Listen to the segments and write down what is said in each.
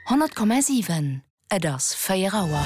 100,7 Et ass 4 Auer.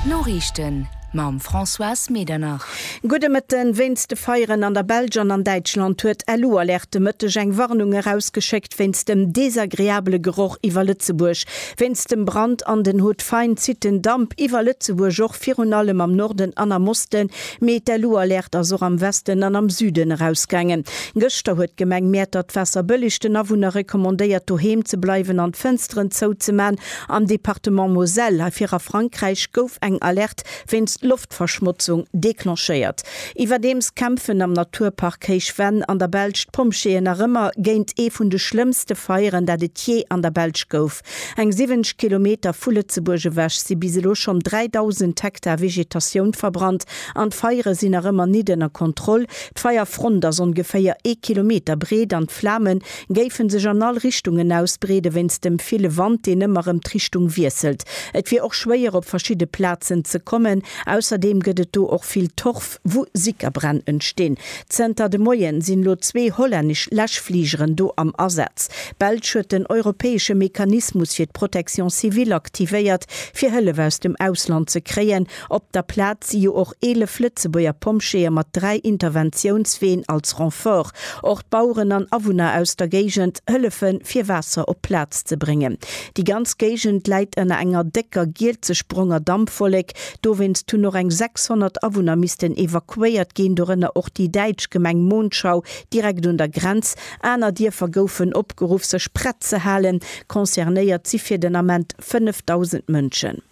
D'Noriichten mam Françoise Medernach. Gudde Mëtte. Wéinst de Feieren an der Belsch an an Däitschland huet d'LU Alerte de Mëtteg eng Warnung erausgeschéckt wéinst dem desagreabele Geroch iwwer Lëtzebuerg. Wéinst dem Brand an den Hautes-Failles zitt den Damp iwwer Lëtzebuerg, och virun allem am Norden an am Osten. Mee d'LU-Alerte ass och am Westen an am Süden erausgaangen. Gëschter huet d'Gemeng Mäertert d'Waasser bëllig. Den Awunner recommandéiert doheem ze bleiwen an d'Fënsteren zou ze man. Am Departement Moselle, hei vir a Frankräich, gouf eng Alerte wéinst Loftverschmotzung declenchéiert. Iwwerdeems kämpfen am Naturpark Héich Venn an der Belsch d'Pompjeeën nach ëmmer géint ee vun de schlëmmste Feieren dat et jee an der Belsch gouf. Eng 70 Kilometer vu Lëtzebuerg ewech si bis elo schonn 3.000 Hektar Vegetatioun verbrannt an d'Feiere sinn nach ëmmer nit ënner Kontroll. D'Feierfront ass ongeféier ee Kilometer breet an d'Flame géife sech an all Richtungen ausbreede wéinst dem ville Wand, deen ëmmer erëm d'Richtung wiesselt. Et wier och schwéier op verschidde Plazen ze kommen. Ausserdeem gëtt et do och vill Torf. wou Sickerbränn entstinn. Zënter de Moien sinn elo zwee hollännesch Läschfligeren do am Asaz. Belsch huet den europäesche Mechanismus fir d'Protection civile aktivéiert, fir Hëllef aus dem Ausland ze kréien. Op der Plaz si jo och 11 Lëtzebuerger Pompjeeë mat dräi Interventiounsween als Renfort. Och d'Baueren an Awunner aus der Géigend hëllefe fir Waasser op d'Plaz ze bréngen. Déi ganz Géigend läit ënner enger décker gielzeschbronger Dampwollek. Dowéinst hunn och eng 600 Awunner missten evakuéiert ginn, dorënner och déi däitsch Gemeng Monschau direkt un der Grenz. Aner Dierfer goufen opgeruff sech prett ze halen. Concernéiert si fir den Ament 5.000 Mënschen.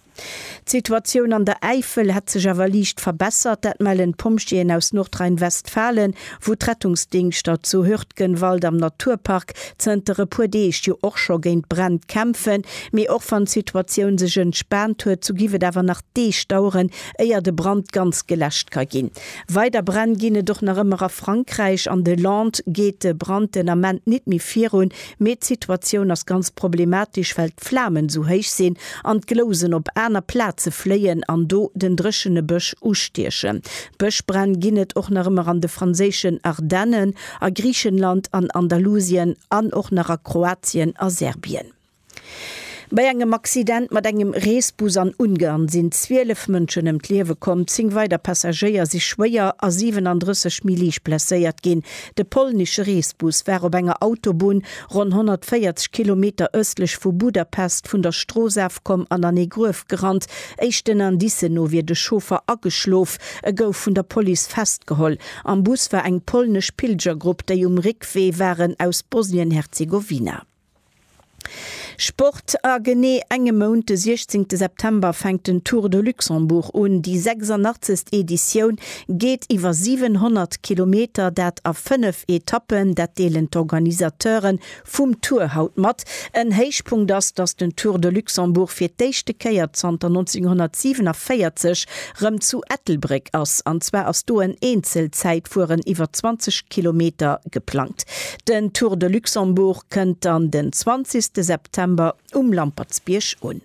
D'Situatioun an der Äifel hätt sech awer liicht verbessert, dat mellen d'Pompjeeën aus Nordrhein-Westfalen. wou d'Rettungsdingschter zu Hürtgenwald am Naturpark zënter e puer Deeg jo och scho géint Bränn kämpfen, mee och wann d'Situatioun sech entspaant huet, sou giff et awer nach Deeg daueren, éier de Brand ganz geläscht ka ginn. Weider Bränn ginn et och nach ëmmer a Frankräich. An de Landes geet de Brand den Ament nit méi virun, Mee d'Situatioun ass ganz problematesch, well d'Flamen esou héich sinn an d'Glousen op aner Plaze fléien an do den dréchene Bësch ustiechen. Bëschbränn ginn et och nach ëmmer an de franséischen Ardennen, a Griichenland, an Andalusien an och nach a Kroatien a Serbien. Bei engem Accident mat engem Reesbus an Ungarn sinn 12 Mënschen ëm d'Liewe komm, 10 weider Passagéier si schwéier a 37 méi liicht blesséiert ginn. De polnesche Reesbus war op enger Autobunn ronn 140 Kilometer ëstlech vu Budapest vun der Strooss afkomm an an ee Gruef gerannt. Éischten Indicen no wier de Chauffer ageschlof. E gouf vun der Police festgeholl. Am Bus war eng polnesch Pilgergrupp, déi um Réckwee waren aus Bosnien-Herzegowina. Sport, A genee engem Mount, de 16 September, fänkt den Tour de Luxembourg un. Déi 86. Editioun geet iwwer 700 Kilometer, dat a fënnef Etappen. Dat deelen d'Organisateure vum Tour haut mat. En Héichpunkt ass, datt den Tour de Luxembourg fir d'éischte Kéier zanter 1947 rëm zu Ettelbréck ass. An zwar ass do en Eenzelzäitfueren iwwer 20 Kilometer geplangt. Den Tour de Luxembourg kënnt dann den 20 ste September um Lampertsbierg un.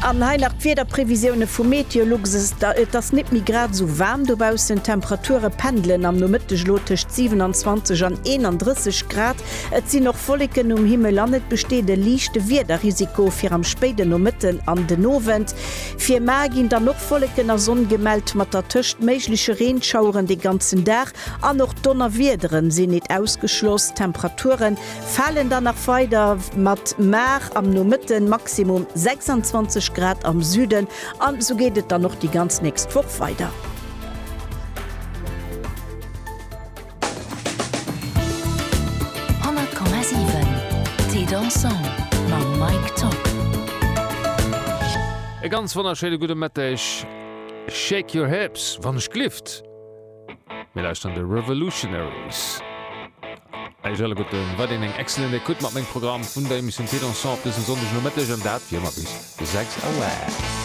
An hei nach d'Wiederprevisioune vu Meteolux, Et ass nit méi grad esou waarm dobaussen, d'Temperature pendelen am Nomëtteg elo tëscht 27 an 31 Grad. Et sinn och Wolleken um Himmel an et besteet e liichte Wiederrisiko fir am spéiden Nomëtten an den Owend. Fir mar ginn dann och Wolleken a Sonn gemellt, mat dertëscht méigleche Reenschaueren de ganzen Dag. An och Donnerwiedere sinn nit ausgeschloss. D'Temperature falen dann nach weider mat mar am Nomëtten Maximum 26 Grad am Süden an esou geet et dann och déi ganz nächst Woch weider. E ganz wonnerschéine gudde Mëtteg, Shake your hips, wann ech glift. Mir lauschteren The Revolutionaries. Eis alleguerten war deen eng excellent Écoute mat mengem Programm vun der Emission Thé Dansant op dësem Sonndegnomëtteg, an dat wéi ëmmer bis 6 Auer.